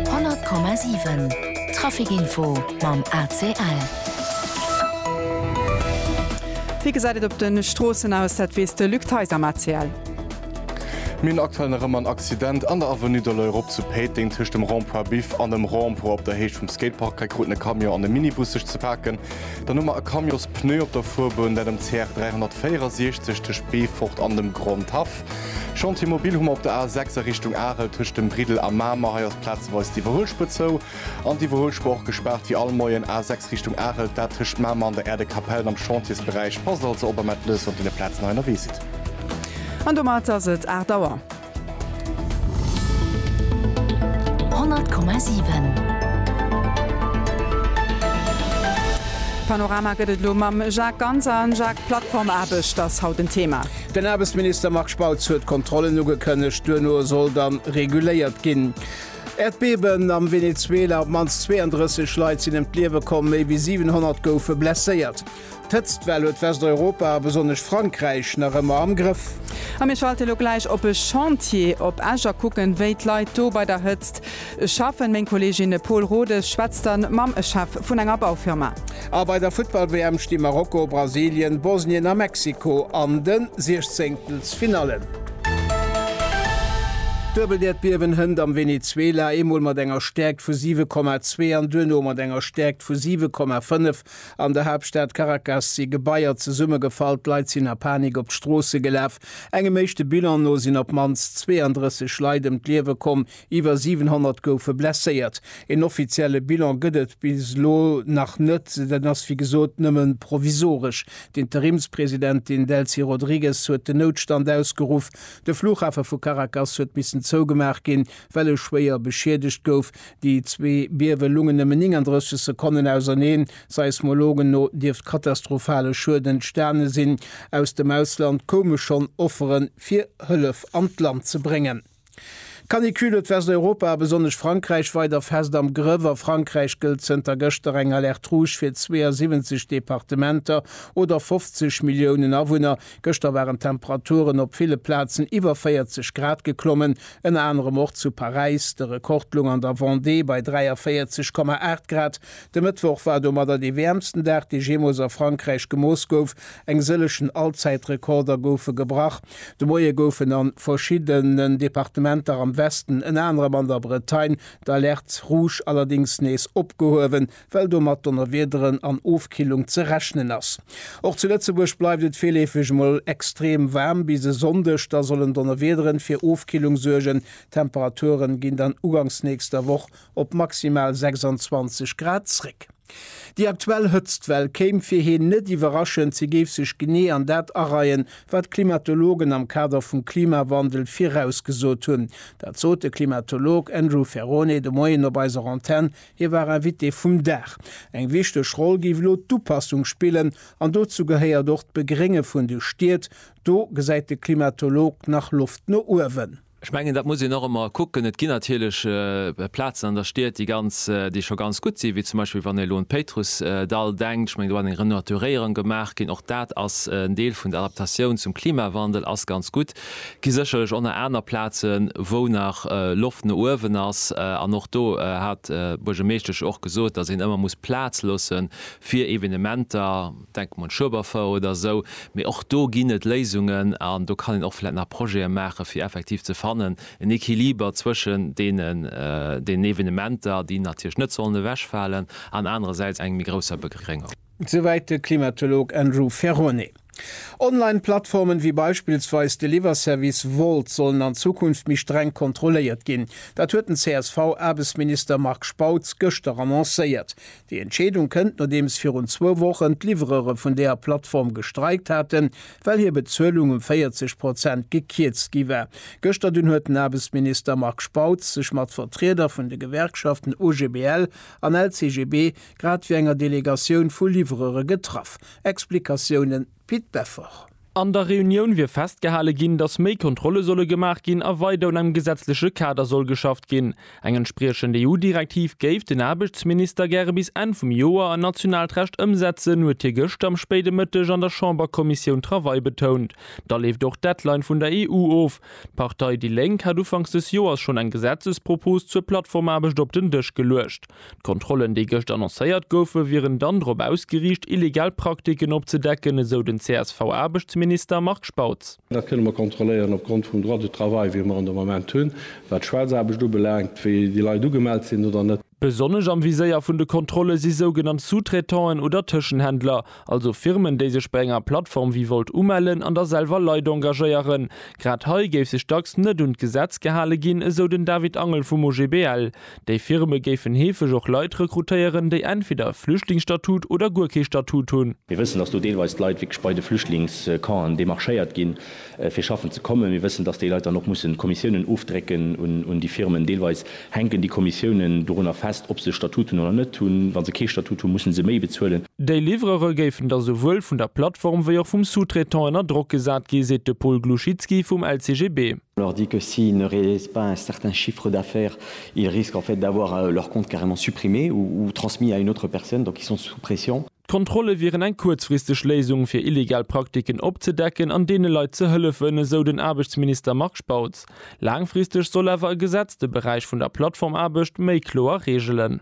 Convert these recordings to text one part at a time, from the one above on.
100,7 Trafikinfo mam ACL. Wéi gesäit et op de Stroossen aus? Dat weess de Luc Theis am ACL. Mir hunn aktuell nach ëmmer en Accident an der Avenue de l'Europe zu Péiteng. Tëscht dem Rond-point Biff an dem Rond-point op der Héicht vum Skatepark hei kruten e Camion an e Minibus sech ze paken. Dann hu mer e Camionspneu op der Fuerbunn, dat um CR 364 tëscht Beefort an dem Grondhaff. Chantier mobil hu mer op der A 6 a Richtung Arel tëscht dem Briddel a Mamer. Hei ass plazeweis d'Iwwerhuelspur zou an d'Iwwerhuelspur och gespaart. Wéi all Moien A 6 Richtung Arel, dat tëscht Mamer an der Aire de Capellen am Chantiersberäich. Passt also op a mellt lech, wann dir no Plazen hei ënnerwee sidd. An domat ass et 8 Auer. 100,7. Panorama gëtt et elo mam Jacques Ganser. Jacques, Plattformaarbecht ass haut en Thema. Den Aarbechtsminister Marc Spautz huet Kontrollen ugekënnegt, duerno soll dann reguléiert ginn. Äerdbeben am Venezuela, op d'mannst 32 Leit sinn ëm d'Liewe komm, méi wéi 700 goufe blesséiert. D'Hëtztwell huet Westeuropa a besonnesch Frankräich nach ëmmer am Grëff. A mir schalte lo gläich op e Chantier op Esch a kucken, wéi d'Leit do bei der Hëtzt Ech schaffen. Meng Kolleegin Paule Rodes schwätzt dann mam Chef vun enger Baufirma. A bei der Futtball-WM sti Marokko, Brasilien, Bosnien a Mexiko an de Siechzéngtelsfinallen. Duebeldierdbiewen hënt am Venezuela, eemol mat enger Stäerkt vu 7,2 an duerno mat enger Stäerkt vu 7,5. An der Haaptstad Caracas si Gebaier zesummegefall, d'Leit sinn a Panik op d'Stroosse gelaf. Engem éischte Bilan no sinn op d'mannst 32 Leit ëm d'Liewe komm, Iwwer 700 goufe blesséiert. Een offizielle Bilan gëtt et bis elo nach net. Dat ass wéi gesot nëmme provisoresch. D'Interimspresidentin Delcy Rodrigues huet den Noutstand ausgeruff. De Flughafe vu Caracas huet missen zougemaach ginn, well e schwéier beschiedegt gouf. Déi zwee Biewe lungen nëmmen 39 Sekonnen auserneen. Seismologen no dierft katastrophale Schued entstane sinn. Aus dem Ausland koume schonn Offere fir Hëllef an d'Land ze bréngen. D'Canicule huet Westeuropa a besonnesch Frankräich weider fest am Grëff. A Frankräich gëllt zënter gëschter eng Alerte rouge fir 72 Departementer oder 50 Milliounen Awunner. Gëschter waren d'Temperaturen op ville Plazen iwwer 40 Grad geklommen, ënner anerem och zu Paräis. De Rekord loung an der Vendée bei 43,8 Grad. De Mëttwoch war domadder dee wäermsten Dag, dee jeemools a Frankräich gemooss gouf. Eng sëllegen Allzäitrekorder goufe gebrach. De Moie goufen a verschiddenen Departementer am Westen, ënner anerem an der Bretagne, d'Alertes rouges allerdéngs nees opgehuewen, well do mat Donnerwiederen an Ofkillung ze rechnen ass. Och zu Lëtzebuerg bleift et virleefeg emol extrem waarm. Bis e Sonndeg da sollen Donnerwiederen fir Ofkillung suergen. D'Temperaturen ginn dann ugangs nächster Woch op maximal 26 Grad zréck. Déi aktuell Hëtztwell kéim fir hien net iwwerraschend, si géif sech genee an dat areien, wat d'Klimatologen am Kader vum Klimawandel virausgesot hunn. Dat sot de Klimatolog Andrew Ferrone de Moien op eiser Antenn, hie war Invité vum Dag. Eng wichteg Roll géif elo d'Upassung spillen an dozou gehéiert och d'Begrénge vun de Stied. Do gesäit de Klimatolog nach Loft no uewen. Ech mengen, dat muss een och ëmmer kucken. Et ginn natierlech Plazen an der Stied, déi ganz, déi scho ganz gutt sinn, wéi zum Beispill wann ee elo un d'Péitrussdall denkt. Ech mengen, do ass eng Renaturéierung gemaach ginn. Och dat ass en Deel vun der Adaptatioun zum Klimawandel, ass ganz gutt. Et gi sécherlech och nach aner Plazen, wou nach Loft no uewen ass. An och do hat d'Buergermeeschtesch och gesot, datt een ëmmer muss Plaz loosse fir Evenementer. Denken un Schueberfouer oder esou. Mee och do ginn et Léisungen an do kann een och vläit nach Projete maachen, fir effektiv ze fannen, en Equiliber zwëschen deenen, deenen Evenementer, déi natierlech net sollen ewechfalen, an anerersäits engem méi grousser Begréngung. Souwäit de Klimatolog Andrew Ferrone. Online Plattformen, wéi beispillsweis de Liwwerservice Wolt, sollen an Zukunft méi streng kontrolléiert ginn. Dat huet den CSV-Aarbechtsminister Marc Spautz gëschter annoncéiert. Déi Entscheedung kënnt, nodeems virun zwou Wochen d'Livrere vun deer Plattform gestreikt haten, well hir Bezuelung um 40 Prozent gekierzt gi war. Gëschter dunn huet den Aarbechtsminister Marc Spautz sech mat Vertrieder vun de Gewerkschaften OGBL an LCGB grad wéi enger Delegatioun vu Livrere getraff. Explikatiounen. wéi d'Beffor. An der Reunioun wier festgehale ginn, datt méi Kontrolle solle gemaach ginn a weider un engem gesetzleche Kader soll geschafft ginn. Eng entspriechend EU-Direktiv géif den Aarbechtsminister gäre bis Enn vum Joer an nationaalt Recht ëmsetzen, huet hie gëschter am spéide Mëtteg an der Chamberkommissioun Travail betount. Da leeft och d'Deadline vun der EU of. D'Partei déi Lénk hat ufanks des Joers schonn eng Gesetzespropos zur Plattformaarbecht op den Dësch geluecht. D'Kontrollen, déi gëscht annoncéiert goufen, wieren dann drop ausgeriicht, illegal Praktiken opzedecken, esou den CSV-Aarbechtsminister Marc Spautz. Dat kënne mer kontrolléieren opgrond vum Droit du travail, wéi mer en de Moment hunn, wat d'Schwaarzaarbecht ubelaangt, wéi déi Leit ugemellt sinn oder net. Besonnesch am Viséier vun de Kontrolle si sougenannt Sous-traitanten oder Tëschenhändler, also Firmen, déi sech bei enger Plattform wéi Wolt umellen an da selwer Leit engagéieren. Grad hei géif sech dacks net un d'Gesetz gehale ginn, esou den David Angel vum OGBL. Déi Firme géifen heefeg och Leit rekrutéieren, déi entweder e Flüchtlingsstatut oder guer kee Statut hunn. Mir wëssen, dass do deelweis d'Leit wierklech bei de Flüchtlingscampen demarchéiert ginn, fir schaffen ze kommen. Mir wëssen, dass déi Leit dann och mussen Kommissiounen ofdrécken un déi Firmen. Deelweis hänken déi Kommissiounen dorunner fest, ob se e Statut hunn oder net hunn. Wa se kee Statut hunn, mussen se méi bezuelen. Déi Livrere géifen da souwuel vun der Plattform wéi och vum Sous-traitant ënner Drock gesat gi, seet de Paul Gluchytski vum LCGB. On leur dit que s'ils ne réalisent pas un certain chiffre d'affaires, ils risquent en fait d'avoir leur compte carrément supprimé ou transmis à une autre personne, donc ils sont sous pression. D'Kontrolle wieren eng kuerzfristeg Léisung, fir illegal Praktiken opzedecken an deene Leit ze hëllefen, esou den Aarbechtsminister Marc Spautz. Laangfristeg soll awer e Gesetz de Beräich vun der Plattformaarbecht méi kloer reegelen.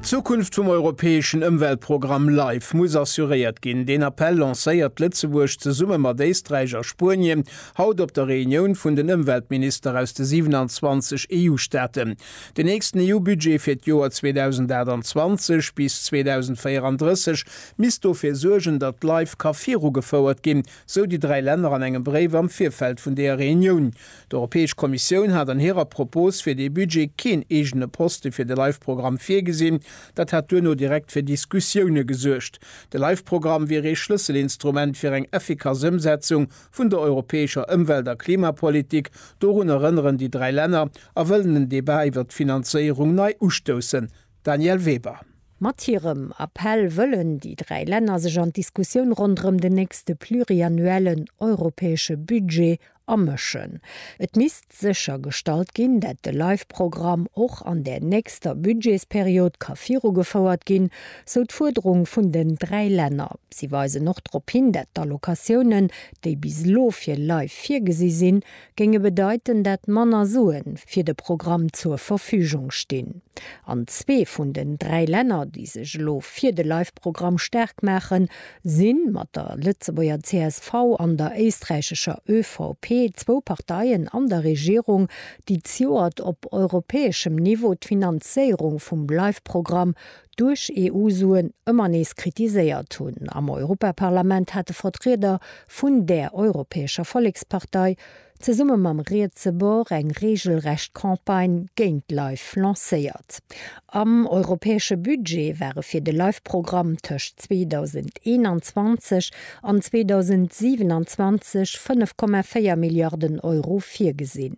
D'Zukunft vum europäeschen Ëmweltprogramm Life muss assuréiert ginn. Deen Appell lancéiert Lëtzebuerg zesumme mat Éisträich a Spuenien haut op der Reunioun vun den Ëmweltminister aus de 27 EU-Staaten. Den nächsten EU-Budget fir d'Joer 2028 bis 2034 misst dofir suergen, datt Life ka virugefouert ginn, sou déi dräi Länner an engem Bréif am Virfeld vun deeër Reunioun. D'Europäesch Kommissioun hat an hirer Propos fir dee Budget keen eegene Poste fir de Life-Programm virgesinn. Dat hätt duerno direkt fir Diskussioune gesuergt. De Life-Programm wier ee Schlësselinstrument fir eng effikass Ëmsetzung vun der europäescher Ëmwelt a Klimapolitik, dorun erënneren déi dräi Länner a wëllen en Debat iwwert d'Finanzéierung nei ustoussen. Danièle Weber. Mat hirem Appell wëllen déi dräi Länner sech an d'Diskussioun ronderëm den nächste pluriannuellen europäesche Budget amëschen. Et misst sécher gestallt ginn, dat de Live-Programm och an där nächster Budgetsperiod ka virugefouert ginn, sou d'Fuerderung vun den dräi Länner. Si weisen och drop hin, dat d'Allocatiounen, déi bis elo fir Live virgesi sinn, géinge bedeiten, dat manner Sue fir de Programm zur Verfügung stinn. An zwee vun den dräi Länner, déi sech elo fir de Live-Programm staark maachen, sinn mat der Lëtzebuerger csv an der éisträichescher ÖVP zwou Parteien an der Regierung, déi zioert op europäeschem Niveau d'Finanzéierung vum LIFE-Programm duerch EU-Suen ëmmer nees kritiséiert hunn. Am Europaparlament hate Vertrieder vun där europäescher Vollekspartei zesumme mam rietse Bord eng reegelrecht Campagne géint Life lancéiert. Am europäesche Budget ware fir de Life-Programm tëscht 2021 an 2027 5,4 Milliarden Euro virgesinn.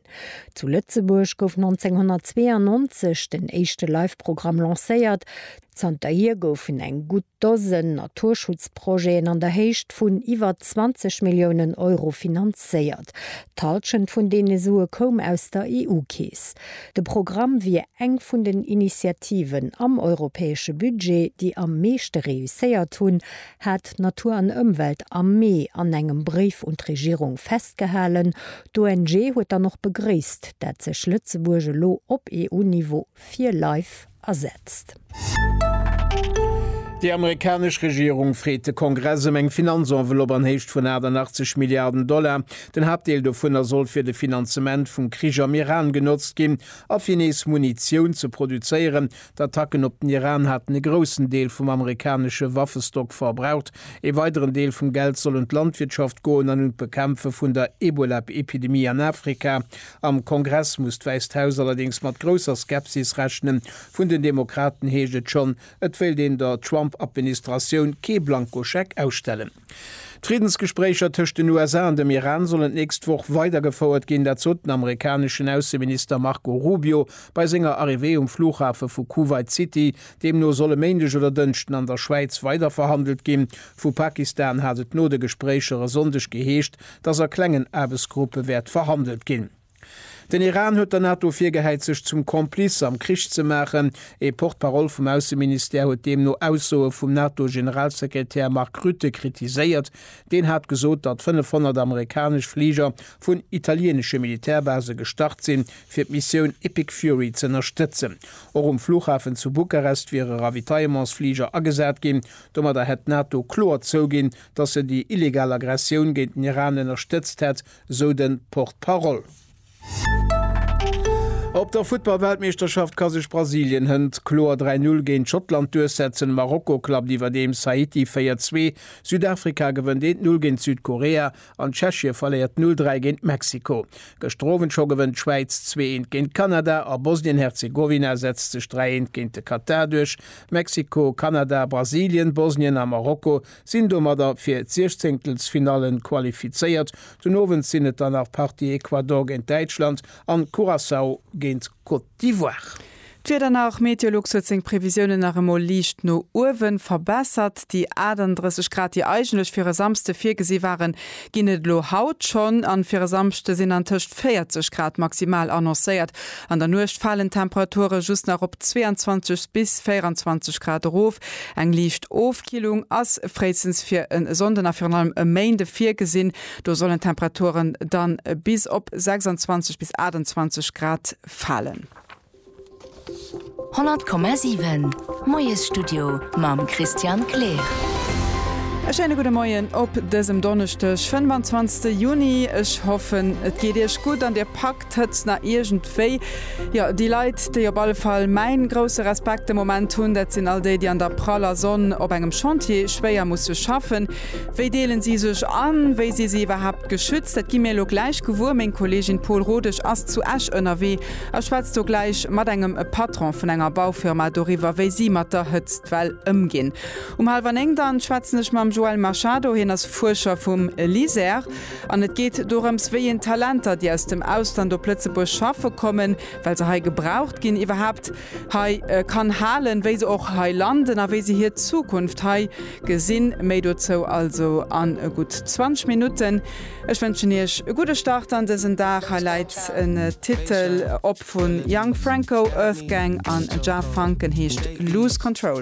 Zu Lëtzebuerg gouf 1992 den éischte Life-Programm lancéiert. Zanterhier goufen eng gutt Dosen Naturschutzprojeten an der Héicht vun iwwer 20 Milliounen Euro finanzéiert. D'Halschent vun deene Sue koum aus der EU-Keess. De Programm wier eng vun den Initiativen am europäesche Budget, déi am meeschte reusséiert hunn, hat Natur an Ëmwelt am Mee an engem Bréif un d'Regierung festgehalen. D'ONG huet dann och begréisst, dat sech Lëtzebuerg elo op EU-Niveau fir Life ersetzt. Déi amerikanesch Regierung freet de Kongress ëm eng Finanzenvelopp an Héicht vun 88 Milliarden Dollar. Den Haaptdeel dovunner soll fir de Finanzement vum Krich am Iran genotzt ginn a fir nees Munitioun ze produzéieren. D'Attacken op den Iran haten e groussen Deel vum amerikanesche Waffestock verbraucht. Ee weideren Deel vum Geld soll un d'Landwirtschaft goen an un d'Bekämpfe vun der Ebola-Epidemie an Afrika. Am Kongress muss d'Wäisst Haus allerdéngs mat grousser Skepsis rechnen. Vun den Demokraten heescht et schonn, et wéilt een der Trump-Administratioun kee Blankoscheck ausstellen. D'Friddensgespréicher tëscht den USA an dem Iran sollen d'nächst Woch weidergefouert ginn. Dat sot den amerikaneschen Ausseminister Marco Rubio bei senger Arrivée um Flughafe vu Kuwait City. Deemno soll e Méindeg oder Dënschden an der Schwäiz weiderverhandelt ginn. Vu Pakistan hat et no de Gespréicher e Sonndeg geheescht, dass a klengen Aarbechtsgruppe wäert verhandelt ginn. Den Iran huet der NATO virgehäit, sech zum Complice am Krich ze maachen. Ee Porte-parole vum Ausseministère huet deemno Aussoe vum NATO-Generalsekretär Mark Rutte kritiséiert. Deen hat gesot, datt 500 amerikanesch Fliger vun italieenesche Militärbase gestart sinn, fir d'Missioun Epic Fury z'ënnerstëtzen. Och um Flughafen zu Bukarest wiere Ravitaillementsfliger agesat ginn. Domadder hätt d'NATO kloer zouginn, datt en déi illegal Aggressioun géint den Iran ënnerstëtzt hätt, sou de Porte-parole. Op der Futtball-Weltmeeschterschaft ka sech Brasilien hënt kloer 3 Null géint Schottland duerchsetzen. Marokko klappt iwwerdeems Haiti 4 Zwee, Südafrika gewënnt 1 Null géint Südkorea an Tschechie verléiert 0 Dräi géint Mexiko. Gëschter Owend scho gewënnt d'Schwäiz zwee Eent géint Kanada a Bosnien-Herzegowina setzt sech 3 Eent géint de Katar duerch. Mexiko, Kanada, Brasilien, Bosnien a Marokko Sinn domadder fir d'Siechzéngtelsfinalle qualifizéiert. Den Owend sinn et dann nach d'Partie Ecuador géint Däitschland an Curaçao géint Côte d'Ivoire. D'Wieder nach, Meteolux huet seng Previsiounen nach emol liicht no uewe verbessert. Déi 38 Grad, déi eigentlech fir e Samsde virgesi waren, ginn et elo haut schonn an fir e Samschde sinn an tëscht 40 Grad maximal annoncéiert. An der Nuecht falen d'Temperature just nach op 22 bis 24 Grad erof. Eng liicht Ofkillung ass fréistens fir e Sonnden a virun allem e Méinde virgesinn, do sollen d'Temperaturen dann bis op 26 bis 28 Grad falen. 100,7 Moiesstudio mam Christian Kleer. E schéine gudde Moien op dësem Donneschdeg, 25 Juni. Ech hoffen et geet Iech gutt an Dir packt d'Hëtzt nach iergendwéi. Jo, déi Leit, déi op alle Fall mäin grousse Respekt de Moment hunn, dat sinn all déi, déi an der praller Sonn op engem Chantier schwéier musse schaffen. Wéi deelen si sech an? Wéi si si iwwerhaapt geschützt? Dat gi mir elo gläich gewuer. Meng Kollegin Paul Rodesch ass zu Esch ënnerwee Ech schwätz do gläich mat engem Patron vun enger Baufirma doriwwer, wéi si mat der Hëtzt well ëmginn. Um hallwer néng dann schwätzen ech mam Joel Machado, hien ass Fuerscher vum LISER an et geet dorëms, wéi een Talenter, déi aus dem Ausland op Lëtzebuerg schaffe kommen, well se hei gebraucht ginn, iwwerhaapt hei kann halen, wéi se och hei landen a wéi se hir Zukunft hei gesinn. Méi dozou also an gutt 20 Minutten. Ech wënschen iech e gudde Start an dësen Dag. Hei läit en Titel op vu Young Franco, Earthgang an Jah Funk, en heescht Lose Control.